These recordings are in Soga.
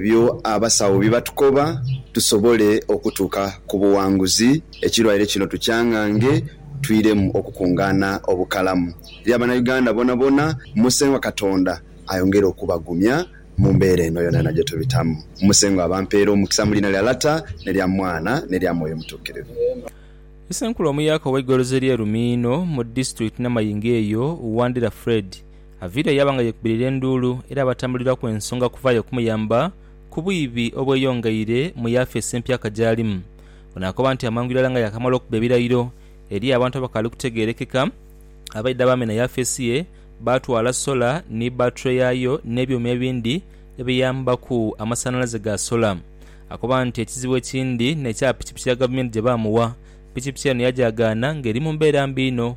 Ebyo abasawo bye batukoba tusobole okutuuka ku buwanguzi, ekirwaire kino tukyangange twiremu okukungaana obukalamu. Eri abanauganda bonabona, Musengwa Katonda ayongere okubagumya mu mbeera eno yonayona gye tubitamu. Musengwa abampeere omukisa mu liina lya Lata, ne lya Mwana, ne lya Mwoyo Mutuukirivu. Isenkulu omuyaka ow'eigoloza ery'e Lumiino mu disitulikiti Namayingo eyo, Wandira Fred Avira yaba nga yekubirira enduulu era abatambuliraku ensonga kuvaayo kumuyamba ku bwibi obweyongeire mu yafeesi empyaka gy'alimu. Ono akoba nti amangu irala nga yaakamala okuba ebirayiro, eriyo abantu abakaali kutegeerekeka abaidha baamena yafeesi ye baatwala sola ni bbature yaayo n'ebyuma ebindi ebiyambaku amasanhalaze ga sola. Akoba nti ekizibu ekindi n'ekya pikipiki ya Gavumenti gye baamuwa. Pikipiki eno yagyagaana ng'eri mu mbeera mbi inho.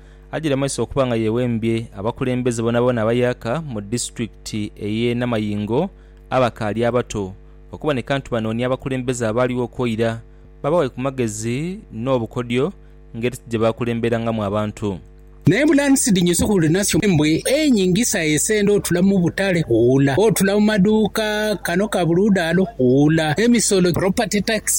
agire mu maiso okuba nga yewembye abakulembeze boonaboona abayaka mu disitulikiti ey'e Namayingo abakaali abato okuboneka nti banoonia abakulembeze abaaliwo okwo ira babawe ku magezi n'obukodyo ngeri ki gye baakulemberangamu abantu. Naye bulaani sidinyo si huli nasyo mbwe enyingisa esende otula mu butale hula, otula mu maduuka kano ka buli ludaalo hula, emisolo, property tax,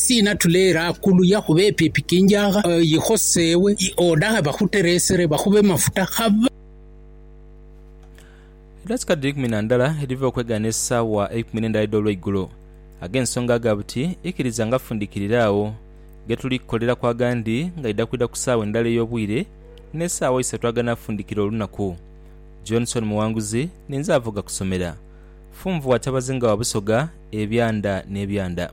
Sina tuleera kuluya kuba epyo epikinjagha yikhosewe odaghe bakhuteresere bakhube mafuta khaba. Eidaatika dhiri ikumi na ndala edhiva okwegaana esaawa eikumi n'endala edh'olweigulo. Ag'ensonga aga buti ikiriza nga fundikirire agho ghe tuli kukoleraku agandi ngaidha kwidha ku saawa endala ey'obwire n'esaawa isatu aganafundikira olunaku. Johnson Muwanguzi ninze avoga ku somera. Funvu wa Kyabazinga wa Busoga ebyanda n'ebyanda.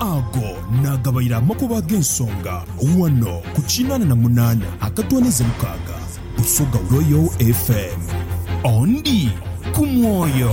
Ago naagabaire amakubo ag'ensonga ghano ku kinaana na munaana akatoonheze mukaaga Busoga Royal FM. Ondi ku mwoyo.